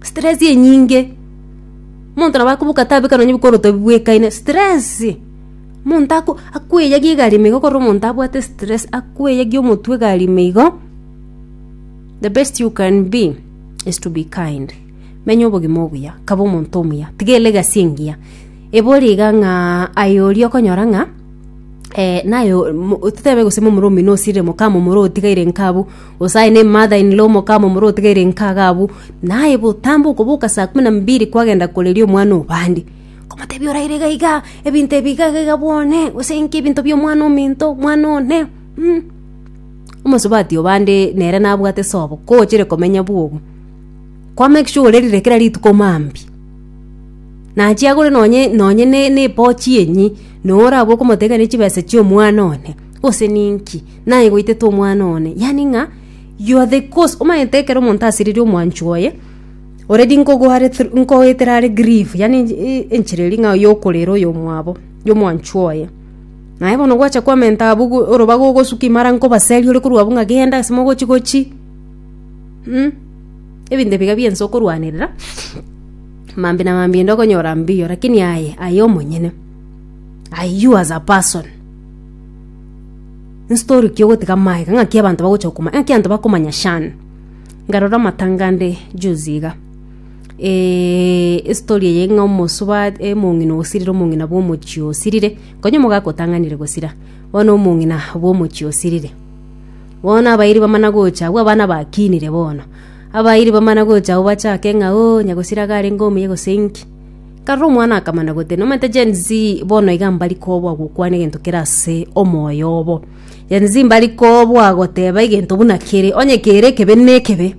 Stress enyinge, omonto nabo akobuka tabeka nonye bikoroto bibwekaine, stress. Omonto ako akweyagia egari ime igo korora omonto abwate stress, akweyagia omotwe egari ime igo, the best you can be is to be kind. Menya obogima obuya, kaba omonto omuya, tiga elegasi engiya, ebori iga ng'a aye oria okonyora ng'a naye omo- totebe gose momura omino osire mokama omoro otigaire inke abwo. Gose aye ne mother in law omoka amo omorua otigaire inka iga abwo, na aye botambe okoboka saa kumi na mbiri kwagenda koreria omwana obande, komotebia oraire iga iga, ebinto ebi iga iga iga bwa one, gose inki ebinto bia omwana ominto, omwana one, mm. Omosubati obande nere nabwate sobo, kogochere komenya bwogo, kwa make sure orerire kera rituko mambia, nachia agore nonye nonye ne ne epochi enyi, na orabwo okomotebia kare ne chibesa chia omwana one, gose ninki. naye goitete omwana one yani ng'a you are the cause omanyete ekero omonto asiririe omwancho oye already nkogoare through nkoetera are grieve yani eh enchera eria ng'a yokorera oyo omwabo ya omwancho oye naye bono gwacha kwamenta abwo go oroba gogosuka imara nkobaseria ore korwa abwo ng'a genda ase mogochi gochi mh ebinto ebi iga bia ense okorwanerera mambia na mambia ende okonyora mbiyo lakini aye aye omonyene aye you as a person. Nstory ki ogotiga maega ng'aki abanto bagocha gokoma ng'aki abanto bakomanya Shan nkarora amatanga ande juzi iga eh, estory eye ng'a omosuba omong'ina osirire omong'ina bwa omochie osirire konya omogaka otang'anire gosira bono omong'ina bwa omochie osirire bono abairi bamana gocha abwo abana bakinire bono abairi bamana gocha abwo bachake ng'a oo nyagosira iga arenge omuya gose inki. Karora omwana akamana gote, nomanyete Gen Z bono iga mbari kobua gokwana egento kere ase omoyo obo. Gen Z mbari kobua goteba egento buna kere, onye kere ekebe nekebe.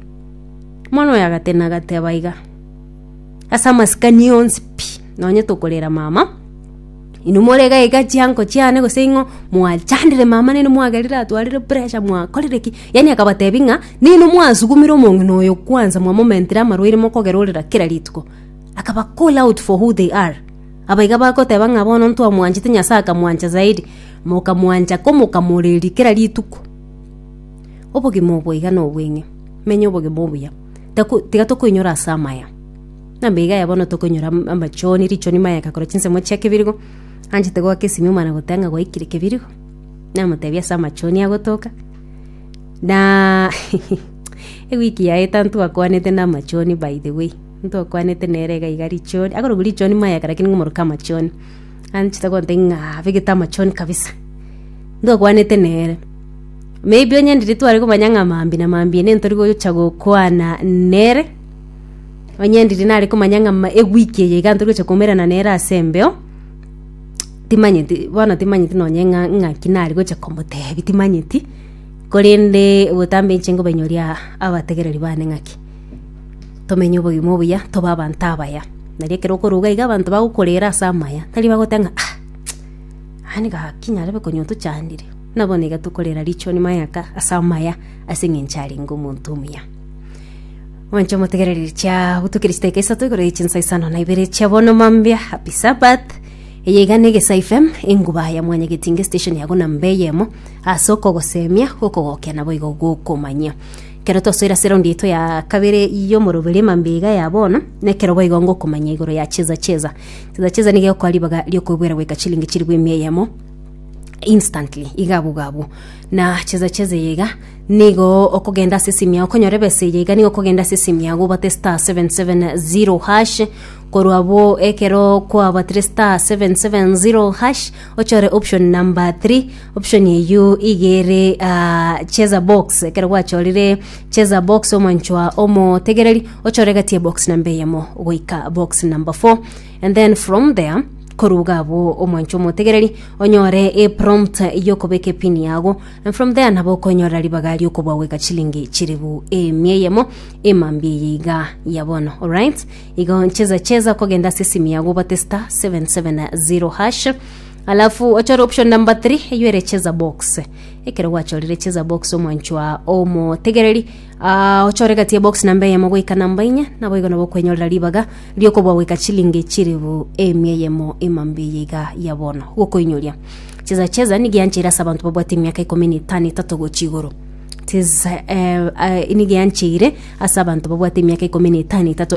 Omwana oyo agatena agateba iga, ase amasikani onsi pi, nonye tokorera mama, inwe more iga iga chianko chiane gose ing'o mwachandire mama nere mwagerire atwarire pressure mwakorire ki, yaani akabatebi ng'a ninwe mwasugumire omong'ina oyo kwanza mwamomentire amarwaire mokogera orera kera rituko. akaba call out for who they are. Abaiga bagoteba ng'a bono ntwamwanchete Nyasae akamwancha zaidi, mokamwancha ko mokamoreria kera rituko. Obogima obo iga nobweng'e. Menya obogima obuya. Taku- tiga tokoinyora ase amaya. Nambaiga aya bono tokoinyora am- amachoni, richoni mayaka korwa chinsemo chia kebirigo, anchete goaka esimio mana goteba ng'a gwaikire kebirigo. Namotebia ase amachoni agotoka, na ewiki yaeta ntwakwanete namachoni by the way. Ntokwanete nere iga iga richoni, akorokwa richoni mayaka rakini ng'a omorokia amachoni. Anchete gontebi ng'a abegete amachoni kabisa. Ntokwanete nere. Maybe onye ndiri tware komanya ng'a mambia na mambia nere ntori gocha gokwana nere, onye ndiri nare komanya ng'a ma ewiki eye iga ntori gocha koumerana nere ase embeo, timanyeti bono timanyeti nonye ng'a ng'aki nare gocha komotebia, timanyeti, korende obotambe inche nkobanyoria abategereri bane ng'aki. tomenye obogima obuya, tobe abanto abaya. Nari ekero okoruga iga abanto bagokorera ase amaya, tari bagoteba ng'a ah yaani gaki nyarebe konywa tochandire, buna bono iga tokorera richoni mayaka ase amaya ase eng'encho arenge omonto omuya. Mwanche omotegereri chia butukire chidakika isato igoro ya chinsa isano na ibere chia bono mambia, happy Sabbath. Eye iga n'Egesa FM, enguba ya mwanyagetinga esitesheni yago namba eyemo, ase okogosemia, gokogokia naboigo gokomanyia. Ekero twasoera seraundi yaito ya kabere y'omoroberi emambeiga ya bono, nekero boigo ngokomanya igoro ya cheza cheza. Cheza cheza nigo egokoa ribaga riokoebuera goika chilingi chilifu emia eyemo instantly iga abwo iga abwo na cheza cheza eye iga nigo okogenda ase esimu yao konyora ebesa eye iga nigo okogenda ase esimu yao obate star 770 hash korwa abwo ekero kwabatire star 770 hash Ochore option number three. Option eyio iga ere ah, cheza box ekero gwachorire cheza box omwanchwa omotegereri ochore gati ya box namba eyemo goika box number four and then from there koruga abo omwancho omotegereri onyore e prompt yokobeka epini yago and from there nabo okonyorera ribaga riokobwa goika chilingi chiribu emia eyemo emambia eye iga ya bono alright Igo ncheza cheza kogenda ase esimu yago obate star 770 hash alafu ochore option number 3 eyo ere cheza box ekero gwachorire cheza box omwanchwa omotegereri ah, ochore gati ya box namba eyemo goika namba inye nabo igo nabo okwenyorera ribaga riokobua goika chilingi chiribu emia eyemo emambi eye iga ya bono gokoinyoria cheza cheza nigiancheire ase abanto babwate emiaka ikomi na etano etato gochi igoro tis eh, eh, nigiancheire ase abanto babwate emiaka ikomi na etano etato